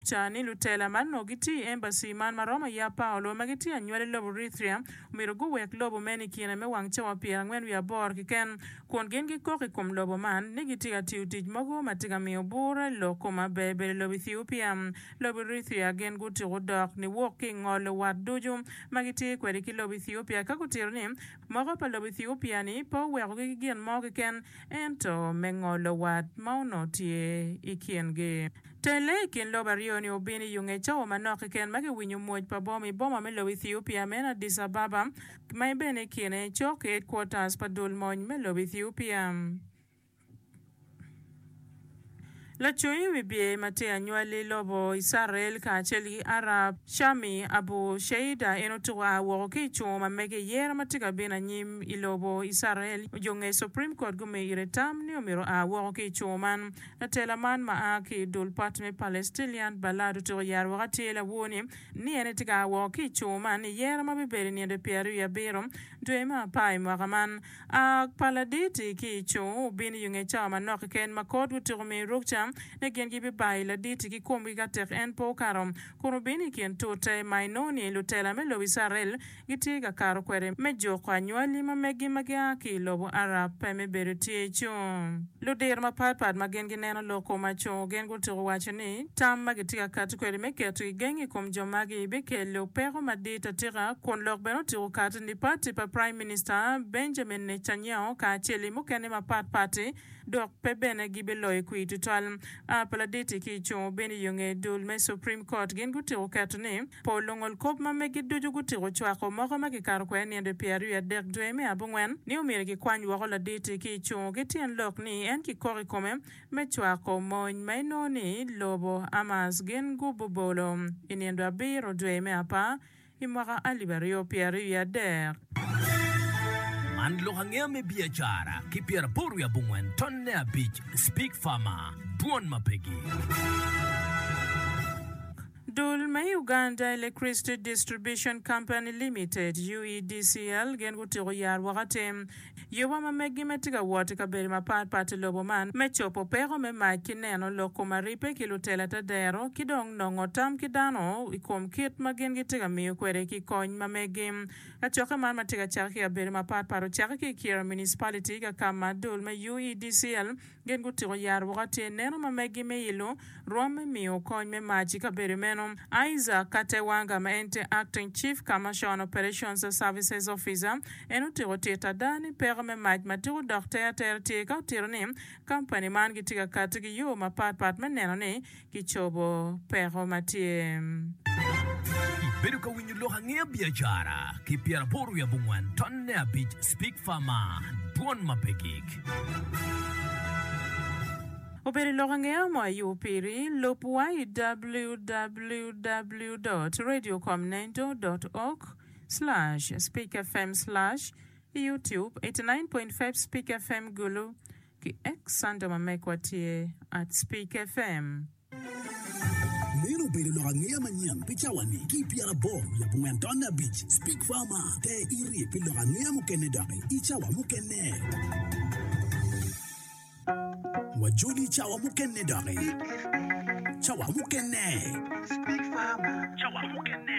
Ca ni lutela ma nongo gitye i embassy man ma romo i Apaolo ma gitye anywal i lobo Rithria omyero guwek lobo meno i kine me wang cawa pyerangwen wiye aboro keken kun gin gikok i kom lobo man ni gitye ka tiyo tic mogo ma tye ka miyo bur i lok koma ber bedo i lobo Ethiopia. Lobo Rithria gin gutuko dok niwok ki i ngolo wat ducu ma gitye kwede ki lobo Ethiopia ka gutito ni moko pa lobo Ethiopia ni pe owekogi ki gin mo keken ento me ngolo wat ma onongo tye i kingi. Telle i kin lobo aryo-ni obino i Ungecau manok keken ma kiwinyo mwoc pa boma i boma me lobo Ethiopia meno Addis Ababa, ma en bene i kine cok ki headquarters pa dul mony me lobo Ethiopia. Lacung i wi bye ma tye anywali lobo Icrael kacel ki Arab, Shami Abu Sheida en otuko a woko ki i cungo ma mege i yero ma tye ka bino anyim i lobo Icrael. Jo nge Supreme Court gumiyo ire tam ni omyero oa woko ki i cungo man. Latela man ma a ki i dul pat me Palestinian Balad otyeko yero woko atir lawor-ni ni en tye ka a woko ki i co man i yero ma bibedo i nino pyer aryo wiye abiro dwe me apar i mwaka man. A pa laditi ki i co obino i onge cawa manok keken ma kot otyeko miyo rukca ni gin gibibayo i laditi ki komgi ka tek en pe okato kun obino i kin tute ma inongo ni lutela me lobo Icrael gitye ka kato kwede me juko anywali ma megi ma gia ki i lobo Arab pe me bedo tye i cung. Ludiro mapatpat ma gin gineno lok kom acungo gin gutuko waco ni tam ma gitye ka kati kwede me keto gigengi i kom jo magi bikelo peko madit atika kun lok bene otuko kati ni pati pa Prime Minista Benjamin Netanyahu kacel i mukene mapatpat-ti dok pe bene gibiloyo kwir tutwal. A pa ladit-ti ki i cung bino i yo nge dul me Supreme Court gin gutuko keto ni Po lungol kop ma megi ducu gutiko cwako moko ma kikato kwede ninde pi aryo adek dwe me abongwen ni omyero kikwany woko laditi ki icungo ki tyen lok ni en kikok i kome me cwako mony ma inongo ni lobo Hamas gin gububolo i nindo abiro dwe me apar i mwaka alip aryo pye aryo i adek. Man lok angeya me biacara ki pyera boro wiye abongwen ton ne abic, Speak Farmer, Dwon ma pegi. Dul me Uganda Electricity Distribution Company Limited, UEDCL, gin gutyeko yar woko atem yoba ma meggi ma tye ka wot i kabedo mapat pat i lobo man me cobo peko me mac ki neno lok kom aripe ki lutela ta dero ki dong nongo tam ki dano i kom kit ma gin gitye ka miyo kwede ki kony ma meggi. Kacokke man ma tye ka cakke ki i kabedo mapat pat ocakke ki i Kira Municipality ka ka ma dul me UEDCL Gin gutyeko yaro woko atir neno ma megi me ilo rwom me miyo kony me mac i kabedo meno. Isaac Katewanga ma en tye Acting Chief Commercial Operations Services Officer en otyeko tit ada ni peko me mac ma tika odok ter atera tye ka otito ni kampani man gitye ka kati ki yo mapat pat me neno ni kicobo peko ma tye. Ibedo ka winyo lok angeya biacara ki pyeraboro wiye abongwen tonne abic speak far ma dwon ma pe gik. Obedo lok angeya mo ayubo piri, lub wa i www dot radio com nendo dot org slash speak fm slash youtube eighty nine point five speak fm gulu. Ki ex Santa ma megwa tye Arts Peak FM. Meno obedo lok angeya manyen pi cawa-ni ki i pyeraboro wiye abongwen tonne abic. Speak Far Mar! Te irye pi lok angeya mukene doki i cawa mukene. Wajoli i cawa mukene doki. Cawa mukene. Speak Far Mar! Cawa mukene.